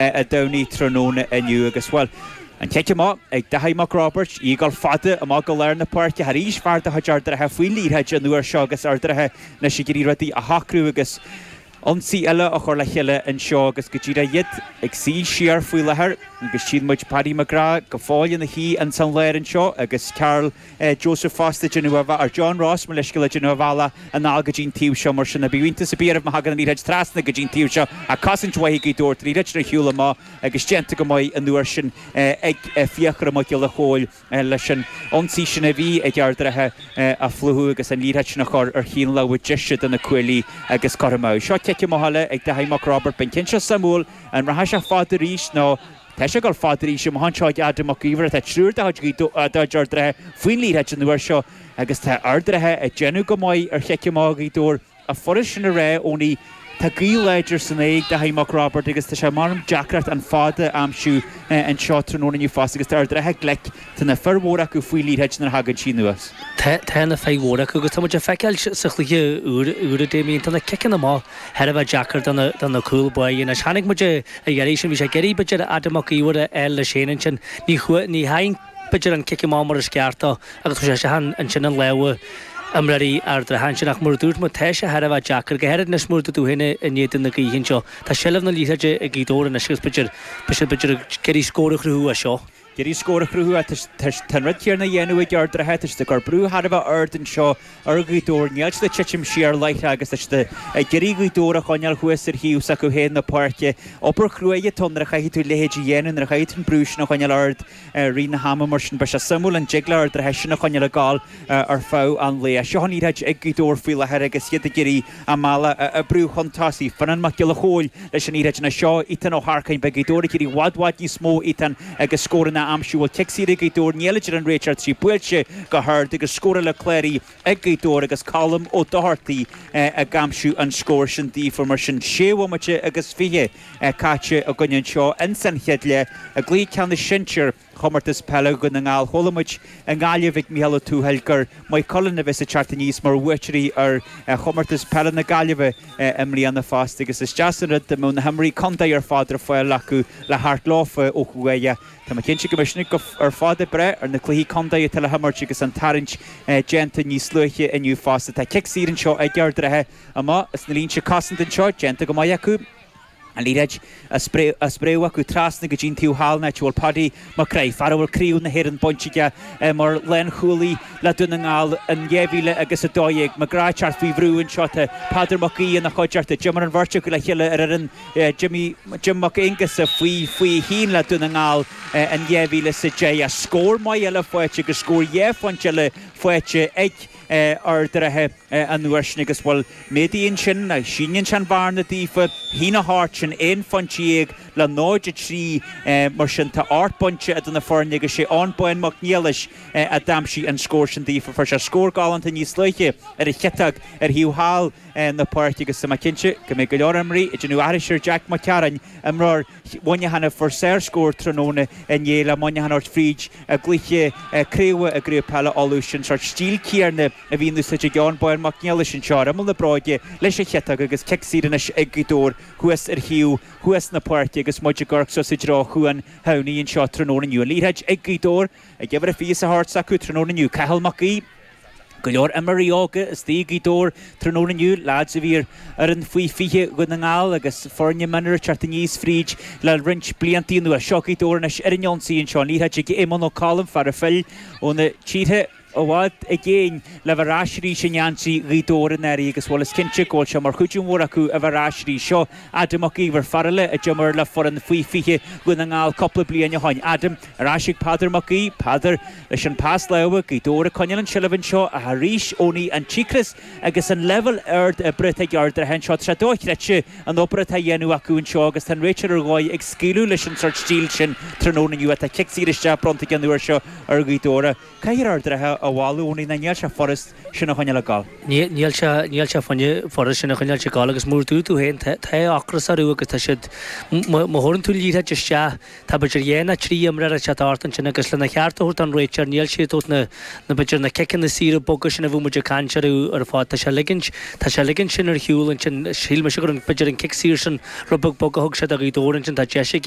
a Domhnaigh tráthnóna inniu agus, bhuel, an cic amach ag Daithí Mac Roibeaird, í ag gabháil fada amach go lár na páirce ach arís fear de chuid Ard an Rátha faoin liathróid an uair seo agus Ard an Rátha anois ag iarraidh rudaí a shocrú agus ionsaí eile a chur le chéile anseo agus go díreach iad ag suí siar faoi láthair agus tchíonn muid Paddy McGrath go fóill ina shuí ins an lár anseo agus Karl Joseph fosta ag déanamh a bh, or John Ross mo leithscéal, ag déanamh a bhealaigh anall go dtí'n taobh seo mar sin ní bheidh iontas a' bith orm má thagann an liathróid trasna go dtí'n taobh seo ach cosaint mhaith ag Gaoth Dobhair an liathróid ar shiúl amach agus déanta go maith an uair sin ag Fiachra Mac Giolla Chomhaill leis an ionsaí sin a bhí ag Ard an Rátha a phlúchadh agus an liathróid sin a chur ar thaobh na láimhe deise de na cuaillí agus curtha amú. Seo cic amach eile ag Dáithí Mac Roibeaird, beidh an ceann seo suimiúil, an rachaidh sé fada arís nó. Tá sé ag cur fada arís amach anseo ag Adam Mac Íomhair ach tá triúr de chuid Ard an Rátha faoin liathróid an uair seo agus tá Ard an Rátha ag déanamh go maith ar chic amach Ghaoth Dobhair is furast sin a rá nó tá gaoth láidir san aghaidh ag Daithí Mac Roibeaird agus tá sé mar deacracht an fad a aimsiú anseo tráthnóna inniu fosta agus tá Ard an Rátha glic Tá na fir mhóra acu faoin liathróid nuair a thagann sí anuas. Tá na fir mhóra acu agus tá muid ag feiceáil sa chluiche úr Damien. Tá na ciceanna amach thar a bheith deacair do na cúl báire. Anois, chonaic muid ar a dheiridh sin. Bhí sé ag iarraidh b'fhéidir Adam Mac Íomhair a fháil leis an cheann sin. Ní thagann b'fhéidir an cic amach mar is ceart dó agus tá sé isteach ansin i lámha imreoirí Ard an Rátha ansin. Ach mar a dúirt muid, tá sé thar a bheith deacair, go háirid anois mar tá tú féin in éadan na gaoithe anseo. Tá seilbh na liathróide ag Gaoth Dobhair anois agus b'fhéidir b'fhéidir ag iarraidh scór a chruthú as seo. Ag iarraidh scór a chruthú tá an rud céanna á dhéanamh ag Ard an Rátha, tá siad ag cur brú thar a bheith ard anseo ar Ghaoth Dobhair, níl siad ag titim siar láithreach agus tá siad ag iarraidh Gaoth Dobhair a choinneáil thuas ar thaobh s'acu féin na páirce. Obair chruaidh atá ann nuair a chaithfidh tú a leithéid a dhéanamh, nuair a chaithfidh tú an brú sin a choinneáil ard i rith an ama mar sin. Beidh sé suimiúil an dtig le hArd an Rátha sin a choinneáil ag gabháil. ar feadh an lae. Seo an liathróid ag Gaoth Dobhair faoi láthair agus iad ag iarraidh a mbealach a oibriú chun tosaigh. Fionnán Mac Giolla Chomhaill leis an liathróid anseo, Ethan Ó hEarcáin Beidh Gaoth Dobhair ag iarraidh i bhfad bhfad níos mó ó Ethan agus scóranna a aimsiú bhuel cic saor ag Gaoth Dobhair níl a deir an réiteoir tá sí buailte go hard agus scór eile cláraithe ag Gaoth Dobhair agus Colm Ó Dochartaigh ag aimsiú an scóir sin daofa Mar sin sé bhomaite agus fiche caite againn anseo in san chéad leath i gcluiche ceannais sinsir Chomórtas Peile Dhún na nGall Chuala muid i nGaillimh ag Micheál Ó Tuathail gur Maigh Cuilinn a bheas ag teacht aníos mar bhuaiteoirí ar Chomórtas Peile na Gaillimhe i mbliana fosta agus is deas an rud go mbeidh na himreoirí contae ar fad ar fáil acu le thabhairt leofa ó thuaidh. Tá mé cinnte go mbeidh siad ar fad ag brath ar na cluichí contae atá le himirt agus an tarraingt déanta níos luaithe inniu fosta. Tá cic saor anseo ag Ard an Rátha, amach as na línte cosanta anseo, déanta go maith acu. An liathróid á spréadh acu trasna go dtí an taobh thall an áit a bhfuil, Paddy McGrath, fear a bhfuil Craobh na hÉireann bainte aige mar lánchúlaí le Dún na nGall in 2000 agus 12, McGrath teacht faoi bhrú anseo, tá, Peadar Mac Aoidh ina choideachta, d'imir an bheirt acu le chéile ar fhoireann Jimmy Jim Mac Aonghusa faoi 21 le Dún na nGall in 2010. Scór maith eile faighte agus scór dhá phointe eile faighte ag. Ard an Rátha an uair sin agus bhuel, méadaíonn sin, nó síneann sé an bhearna daofa, shín a thabhairt sin aon phointe dhéag le 0, 3, mar sin tá ocht bpointe idir na foirne agus sé Eoin Bán Mac Niallais a d'aimsigh an scór sin daofa, fuair sé scór galánta níos luaithe ar a chiotóg ar thaobh thall na páirce agus tá mé cinnte go mbeidh go leor imreoirí ag déanamh aithris ar Jack McCarron, imreoir. Mhuineacháin a fuair sárscór tráthnóna inné le Muineachán a thabhairt fríd a gcluiche craoibhe i gCraobh Peile Uladh. Sin sort stíl céarna a bhí in úsáid ag Eoin Bán Mac Niallais anseo ar imeall na bráige leis a chiotóg agus cic saor anois ag Gaoth Dobhair thuas ar thaobh thuas na páirce agus muid ag amharc suas i dtreo Chuan Shamhnaigh anseo tráthnóna inniu. An liathróid ag Gaoth Dobhair ag uimhir a 24 s'acu tráthnóna inniu. Cathal Mac Aoidh. Go leor imreoirí óga istigh ag Gaoth Dobhair tráthnóna inniu, leaids a bhí ar fhoireann Faoi 20 Dhún na nGall agus foirne mionúir teacht aníos fríd le roinnt bliantaí anuas. Seo Gaoth Dobhair anois ar an ionsaí anseo, an liathróid ag Éamonn Ó Colm, fear a phill ó na tíortha i bhfad i gcéin le bheith ar ais arís i ngeansaí Ghaoth Dobhair i ndáiríre agus, bhuel is cinnte go bhfuil sé mar chuidiú mór acu a bheith ar ais arís. Seo Adam Mac Íomhair, fear eile a d'imir le foireann Faoi 20 Dhún na nGall cúpla bliain ó shoin. Adam, Ar ais ag Peadar Mac Aoidh. Peadar. Leis an pas láimhe Gaoth Dobhair ag coinneáil an tseilbh anseo ach arís Eoiní an t-ocras agus an leibhéal ard oibre atá ag Ard an Rátha anseo tá sé dochreidte an obair atá á dhéanamh acu anseo agus tá an réiteoir ar dhóigh ag scaoileadh leis an sort stíl sin tráthnóna inniu ach tá cic saor isteach bronnta aige an uair seo ar Ghaoth Dobhair. Caithfear Ard an Rátha a mholadh Eoiní ná níl sé furast sin a choinneáil ag gol. Níl sé níl sé furast sin a choinneáil ag gol agus mar a dúirt tú féin tá ocras orthu agus tá siad má thabharann tú liathróid isteach Tá b'fhéidir dhá ná trí imreoir atá thart ansin agus lena cheart a thabhairt don réiteoir níl sé ag tabhairt na b'fhéidir na ciceanna saora boga sin a bhfuil muid ag caint orthu ar fad. Tá sé ligint tá sé ligint sin ar shiúl ansin. Shíl mise go raibh b'fhéidir an cic saor sin rud beag bog a thug sé do Ghaoth Dobhair ansin tá deis ag